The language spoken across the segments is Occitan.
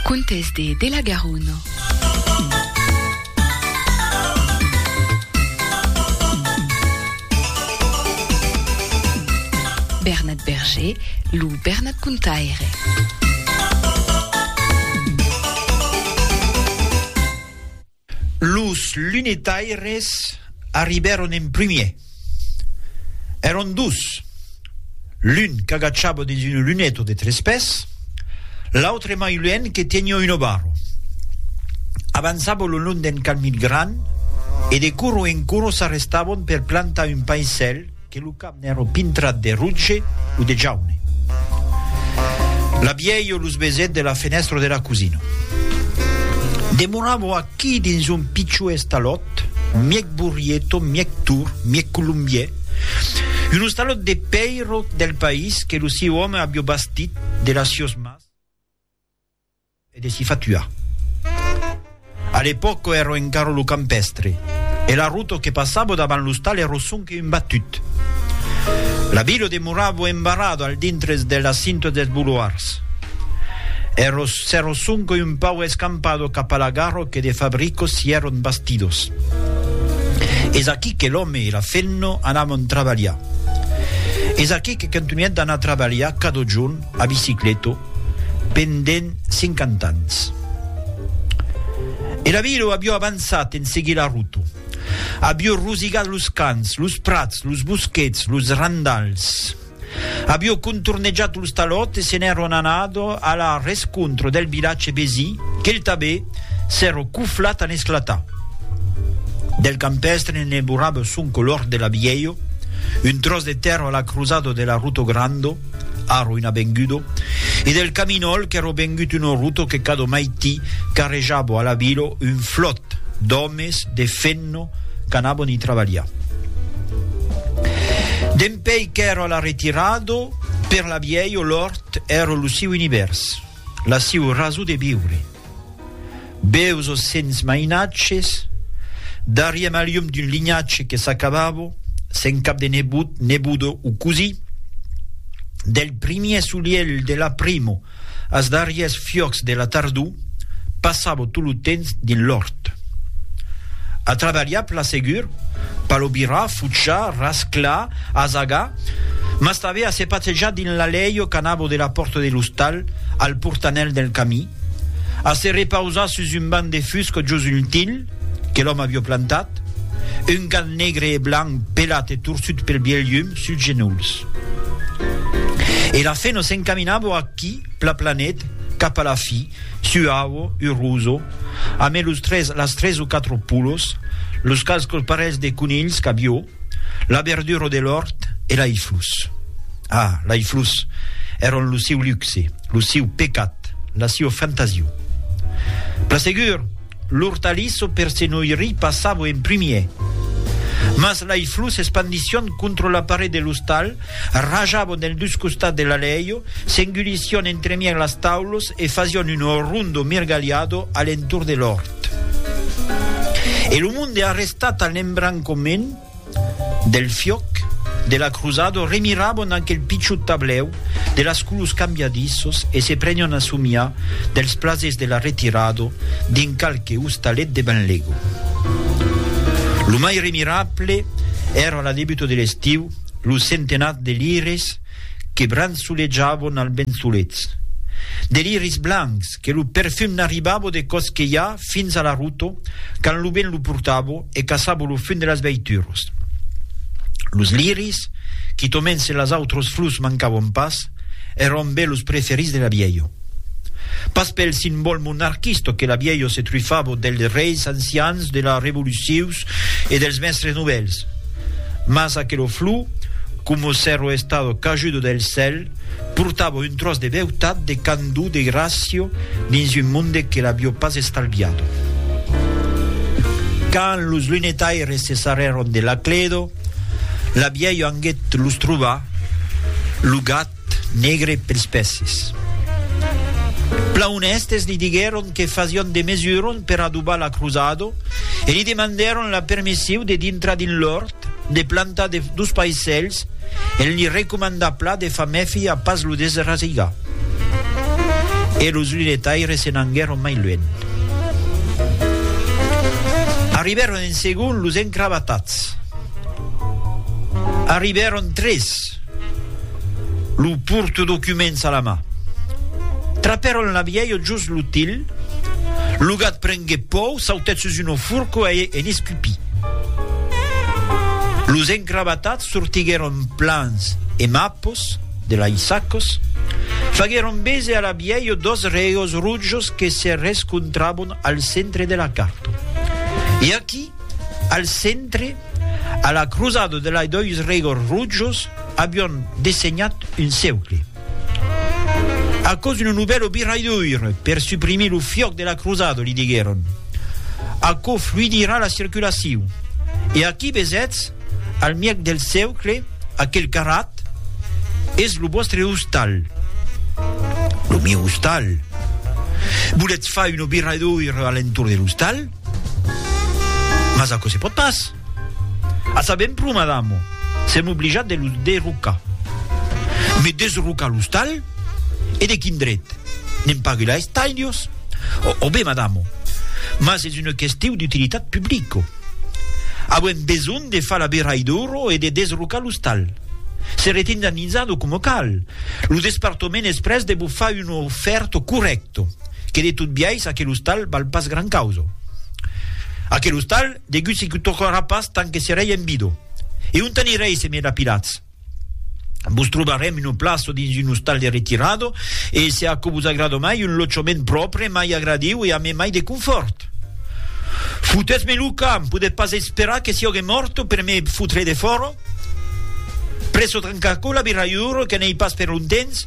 Contes de de la Garona. Bernat Berger, lo Bernat Contaire. Los lunetaires arribèron en primièr. Èron dos, l'un qu'agachava dins una luneta de tres pès, l'autre mai luènh que teniá una barra. Avançava lo long d'un camin grand e de coro en coro s'arrestavan per plantar un paisèl, Que lo cap n'èro pintrat de rotge o de jaune. La vielho los besèt de la fenèstra de la cosina. Demoravo aquí dins un pichó estalòt, mièg burrieto, mièg tur, mièg colombièr, un ostalòt de pèiro del país que lo siu òme avió bastit de las sios mas, E de si fatuar. A l'epòco èrò encara lo campèstre, e la ruto que passavo davant l'ostal èrò sonque un batut. La vila demoravo embarrada al dintres de la cinta dels bouloirs. Èrò s'èrò sonque un pauc escampado cap a la gara que de fabricos s'i èron bastidos. Es aquí que l'òme e la femna anavon trabalhar. Es aquí que contunhèt d'anar trabalhar cada jorn A bicicleta pendent 50 ans. E la vila avió avançat en seguir la ruta. Avió rosigat los camps, los prats, los bosquets, los randals. Avió contornejat los talòts e se n'èron anat a la rescontra del vilatge vesi qu'el tanben s'èra coflat a n'esclatar. Del campèstre ne borrava son color de la vièlha, un tròç de tèrra a la crosada de la ruta granda, Arro una bengudo, e del caminòl qu'èro bengut un orruto que cado maití carrejabo a la vilo un flòt d'òmes de fenno qu'anabon i trabalhar. Dempèi qu'èro a la retirado, per la viei o l'òrt èro lo siu univèrs, la siu raso de viure. Beus o sens mainatges, darriem a lium d'un linhatge que s'acabava, sen cap de nebot, neboda o cosí. Del primièr solielh de l'aprimo as darrièrs fiòcs de la tardor, passava tot lo temps dins l'òrt. A trabalhar, plan segur, palobirar, fuchar, rasclar, asagar, Mas tanben a se pasejar dins l'alèi o canabo de la pòrta de l'ostal, al portanèl del camí, a se repausar sus un banc de fusc jos un tilh que l'òme a bioplantat, un gat negre e blanc pelat e torsut pel bièlh llum suls genolhs. E la feno s'encaminavo aquí, plaplanet, cap a la fi, suau, uroso, amé los tres, las tres o quatro polos, los qualques parelhs de conilhs, cabiò, La verdura de l'òrt e lai flus. Ah, lai flus èron lo siu luxe, lo siu pecat, la siua fantasiu. Plan segur, l'ortaliço per se noirir passavo en primier. Mas lai flus espandission contra la paret de l'ostal, Rajavon dels dus costats de l'alèio, s'engulission entremièg las taulos e fasion un rondo mirgalhado a l'entorn de l'òrt. E lo monde arrestat al lembrancomènt del fiòc de la cruzado remirabon aquel pichut tablèu de las colors cambiadissos e se prenion a somiar dels plasers de la retirado dins qualque ostalet de Benlego. Lo mai remirable èra la debuta de l'estiu, Lo centenat de liris que bransoletjavon al vent solets. De liris blancs que lo perfum n'arribavo de Cosquelhà fins a la Ruto quand lo vent lo portavo e caçavo lo fum de las veituros. Los liris, quitomens se las autros flurs mancavon pas, èron be los preferits de l'abielho. Pas pel simbòl monarquista que l'abielho se trufavo dels reis ancians de la revolucius, e dels mèstres novèls, mas aquelo flou, coma s'èro estado cajudo del cèl, portava un tròç de beutat, de candor, de gràcia dins un monde que l'avió pas estalviado. Quand los lunetaires se sarrèron de Lacledo, la vièlha anguèt los trobar, lo gat, Negre pels pèsses. Plan onèstes li diguèron que fasión de mesuron per adobar la crosado e li demandèron la permessiu de dintrar dins l'òrt, de plantar de dos paisèls e li recomandar pla de far mèfi a pas lo desrasigar. E los lunetaires se n'anguèron mai luènh. Arribèron en segon los encravatats. Arribèron tres. Cat. Lo porte documents a la ma. Trapèron la vièlha jos lo til. Lo gat prengué pòu, sautèt sus una forca e en escupí. Los encravatats sortiguèron plans e mapos de lai sacos, faguèron bese a la vièlha dos reos rojos que se rescontrabon al centre de la carta. E aquí, al centre, A la crosada de lei dois regors rojos avion dessenhat un ceucle. Aquò's una novèla viraidura per suprimir lo fiòc de la crosada, li diguèron. Aquò fluidirà la circulacion. E aquí vesètz, al mièg del ceucle, aquel carrat, es lo vòstre ostal. Lo mieu ostal? Volètz far una viraidura a l'entorn de l'ostal? Mas aquò se pòt pas! A saber un pro, madamo, sèm oblijats de los derrocar. Mes desrocar l'ostal? E de quin dret? Ne'n pagui la estailios? Ò ben, madamo, mas es una questiu d'utilitat publico. Auem besonh de far la beraidora e de desrocar l'ostal. Seretz indenizado coma cal. Lo despartament es près de vos far una ofèrta corrècta. Que de tot biais aquel ostal val pas gran causa. Aquel ostal, degut se que tocarà pas tant que serei en vida. E ont anirei se me lapidatz? Vos trobarem una plaça dins un ostal de retirada e, se aquò vos agrada mai, un lotjament pròpre, mai agradiu e amé mai de confòrt. Fotètz-me lo camp, podètz pas esperar que siògue mòrta per me fotre defòra? Presso trancar aquò la birraiura que n'ei pas per longtemps?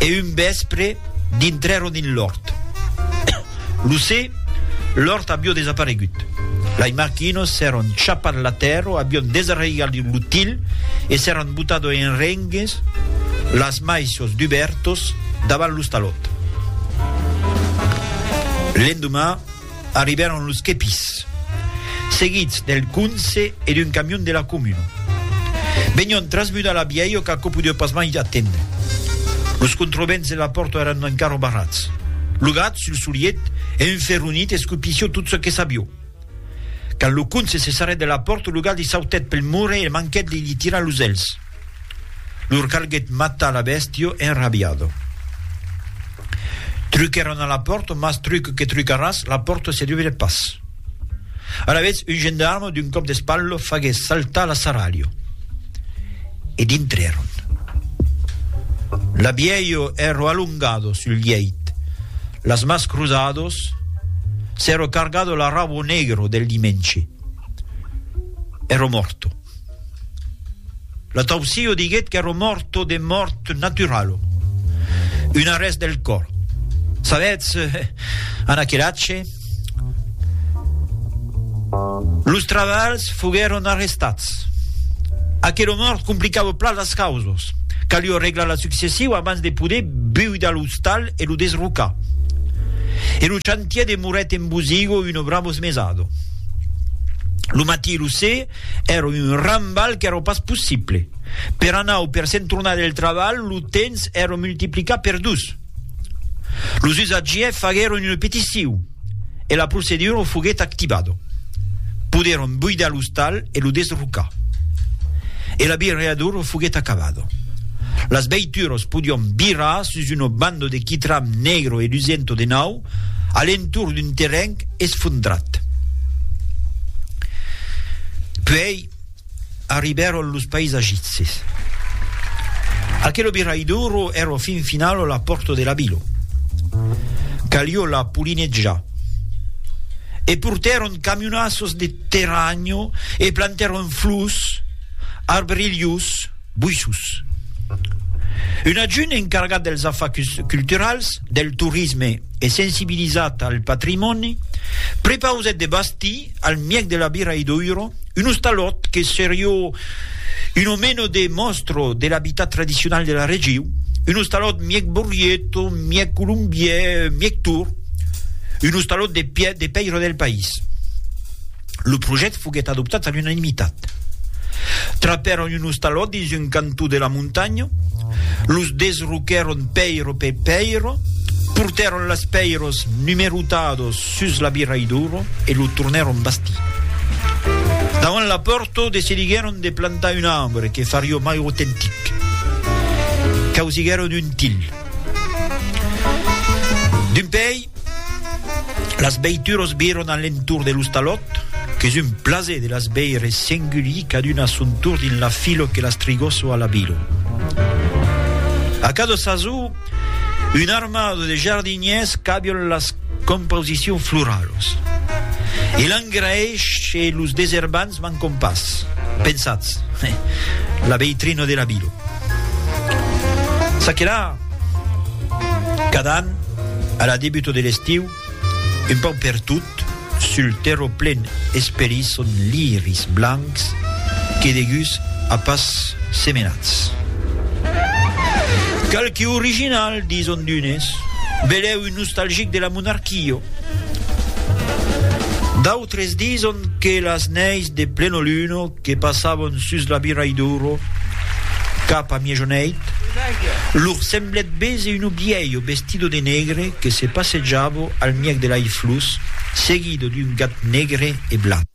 E un vèspre, dintrèron dins l'òrt. Lo se, l'òrt avió desaparegut. Lai marquinos s'èron chapat la tèrra, avión desarraigat lo til e s'èron botado en rengues las maissos dubèrtos davant l'ostalòt. L'endomà, Arribèron los quepis, seguits del conse e d'un camion de la comuna. Venion trasmudar la bièlha qu'aquò podèu pas mai atendre. Los controvents de la pòrta èran encara barrats. Lo gat, sul soliet, e un ferronit escupissió tot çò que sabió. Quand lo conse se sarrèt de la pòrta, lo gat li sautèt pel mur e manquèt de li tirar los èlhs. Lor calguèt matar la bèstia enrabiada. Truquèron a la pòrta, mas truque que trucaràs, la pòrta se dubrèt pas. Alavetz, un gendarme, d'un còp d'espatla, faguèt saltar la sarralha. E dintrèron. La vièlha èra alongada sul lièit, las mans cruzadas, s'èra cargada la rauba negra del dimenge. Èra mòrta. L'ataupsio diguèt qu'èro mòrto de mòrt naturalo, un arrèst del còr. Sabètz, en aquel atge, los trabalhs foguèron arrestats. Aquelo mòrt complicava plan las causas, calió reglar la successiu abans de poder buidar l'ostal e lo desrocar. E lo chantier demorèt en bosigo un o bramos mesado. Lo matí e lo se, Èra un rambalh qu'èra pas possible. Per anar o per se'n tornar del trabalh, lo temps èra multiplicat per dos. Los usatgièrs faguèron una peticion e la procedura foguèt activada. Podèron buidar l'ostal e lo desrocar. E la birreadura foguèt acabada. Las veituras podián birrar sus una banda de quitram negre e lusenta de nau. a l'entorn d'un terren esfondrat. Puèi arribèron los paisagitses. Aquelo viraiduro èra fin finalo la pòrta de la vila. Calió la polinejar. E portèron camionassos de terranho e plantèron flors, arbrilhos, Buissus. Un adjunt encargat dels afachs culturals, del torisme e sensibilizat al patrimòni, prepausèt de bastir, al mièg de la birra Idouro, un ostalòt que serió un o meno de mòstro de l'abitat tradicional de la regiu, un ostalòt mièg borrieto, mièg colombièr, mièg tor, un ostalòt de pèira del país. Lo projèct foguèt adoptat a l'unanimitat. Trapèron un ostalòt dins un cantó de la montanha, los desroquèron pèiro per pèiro, portèron las pèiros numerotados sus l'abiraidoro e lo tornèron bastir. Davant la pòrta decidiguèron de plantar un arbre que farió mai autentic. Causiguèron un til. D'un pèi, Las veituros viron a l'entorn de l'ostalòt, qu'es un plaser de las veire s'engulhir caduna a son torn dins la filo que las trigoso a la vilo. A cada sasó, un armado de jardinièrs cabion las composicions floralos e l'engraèsh e los deserbants mancon pas, pensatz, la veitrina de la vilo. Ça que la. Cada an, a la debuta de l'estiu, un pauc pertot, sul terrò plen esperís son liris blancs que deguts a pas semenats. Qualque original, dison d'unes, belèu un nostalgic de la monarquia, d'autres dison que las neis de plenoluna, que passavon sus la Birai d'Ouro cap a miejoneit, lor semblèt béser un obièlho vestido de negre que se passejava al mièg de l'Aiflus, seguido d'un gat negre e blan.